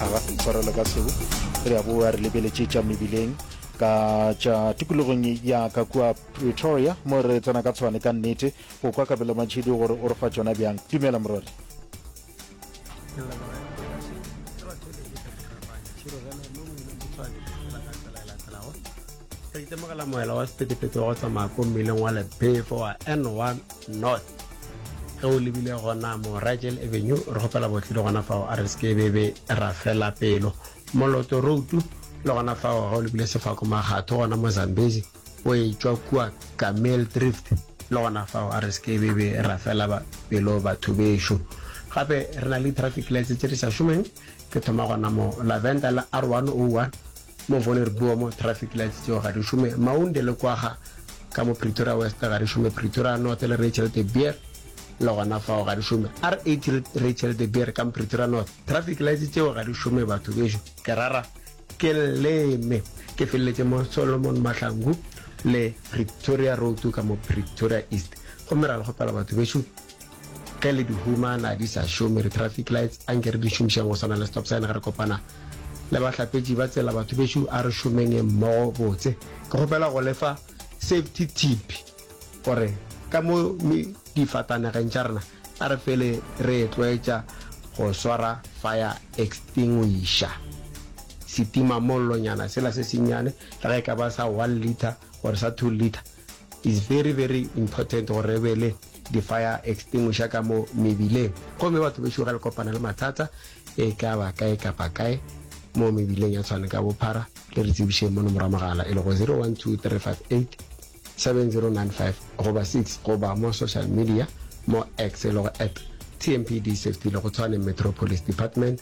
a ga tshwarelo ka seo re a boa re lebeletše tša mebileng ka tša tikologong ya ka kua pretoria mo re tsena ka tshwane ka nnete go kwa kabelo matšhedi gore o re fa tšona bjang dumela morwadi re itemogela moela wa sepetepeto wa go tsamaya ko mmileng wa lebefo wa n1 north ge o lebile gona mo ragel avenue re gopela botlhile gona fao a re se ke bebe ra fela pelo moloto routu le gona fao ga o lebile sefako magatho gona mo zambezi o e tšwa kua camel drift le gona fao a re se ke bebe ra fela ba- pelo batho bešo gape re na le traffic lights tse di sa šomeng ke thoma gona mo lavenda la r101 Mo Voller Buo mo traffic lights tšeo ga di šome, Maunde le Kwaga ka mo Pretoria West ga di šome, Pretoria North le Rachel de Beer le gona fao ga di šome, R8 le Rachel de Beer ka mo Pretoria North traffic lights tšeo ga di šome batho bešo. Ke rara ke leme ke feleletše mo Solomon Mahlangu le Pretoria Road ka mo Pretoria East gomme ra le kgopela batho bešo Ge le di humana di sa šome di traffic lights anke re di šomišeng go swana le stop sign ge re kopana le bahlapetši ba tsela batho bešo a re šomenge mmogo botse ke kgopela go lefa safety tip gore ka mo difatanegeng tša rena a re fele re e tlwaetša go swara fire extinguisher setima mollonyana sela se senyane le ge e ka ba sa one litre or sa two litre Is very very important gore re be le di fire extinguisher ka mo mebileng gomme batho bešo ge le kopana le mathata e ka ba kae kapa kae mo mebileng ya tshwane ka bophara le re tsebišeng mono mora mogala e le go 0123587095 goba 6 goba mo social media mo X e le go at tmpd safety le go tshwane metropolis department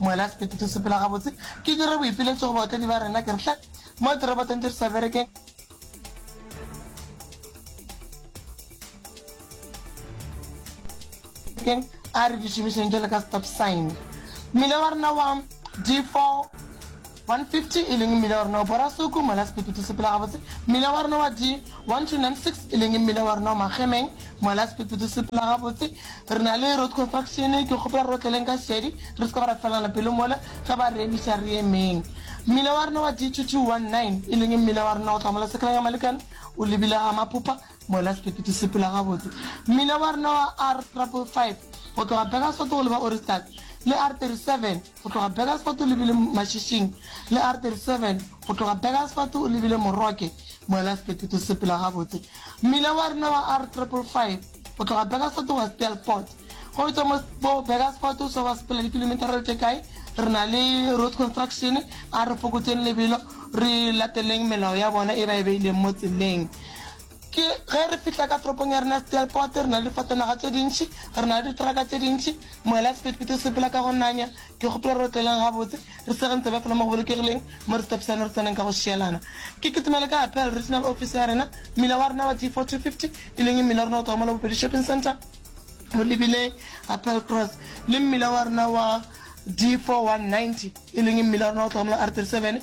Moela sekete tho sepela gabotse ke dire boipiletšo go baotledi ba rena ke re hle mo dirobotong di re sa berekeng. keng a re di šomišeng jalo ka stop sign mmila wa rena wa d4 150, e leng mmila wa rona wa Borasuku, Moelasepete to Sepela Gabotse, mmila wa rona wa di 1296, e leng mmila wa rona wa Magemeng, Moelasepete to Sepela Gabotse. Re na le road construction, ke kgopela re otleleng ka šedi, re se ka ba ra felana pelo mole, ge ba re emiša re emeng. Mmila wa rona wa di 2219, e leng mmila wa rona go tloga mola Sekelang ya Malekane, o lebile ga Maphopha, Moelasepete to Sepela Gabotse. Mmila wa rona wa R triple five, go tloga Burgersfort go leba Ohrigstad, le R 37, Go tloga Burgersfort o lebile Mašišing le R37, go tloga Burgersfort o lebile Moroke, moela Sepeteto se sepela gabotse. Mmila wa rena wa R555 o tloga Burgersfort wa sepela Port. Go tšwa mo bo Burgersfort o swa wa sepela dikilometara tše kae, re na le Road Construction, a re fokotseng lebelo, re lateleng melao ya bona e ba e beileng mo tseleng. Ke ge re fihla ka toropong ya rena Steelpoort, re na le difatanaga tše dintši, re na le ditraka tše dintši, moela sephetephete o sepela ka go nanya. Ke kgopela re otleleng gabotse, re sege ntsebe fela mo go bolokegileng, mo re stepsane re tseneng ka go šielana. Ke kitimele ka Appel, regional office ya rena, mmila wa rena wa D4250, e leng mmila wa rena o tloga mo la Bobedi Shopping Centre o lebile Appel Cross, le mmila wa rena wa D4190, e leng mmila wa rena o tloga mo la R37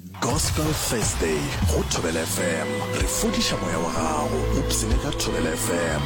Gospel Thursday go Thobela FM, re fodiša moya wa gago, o psene ka Thobela FM.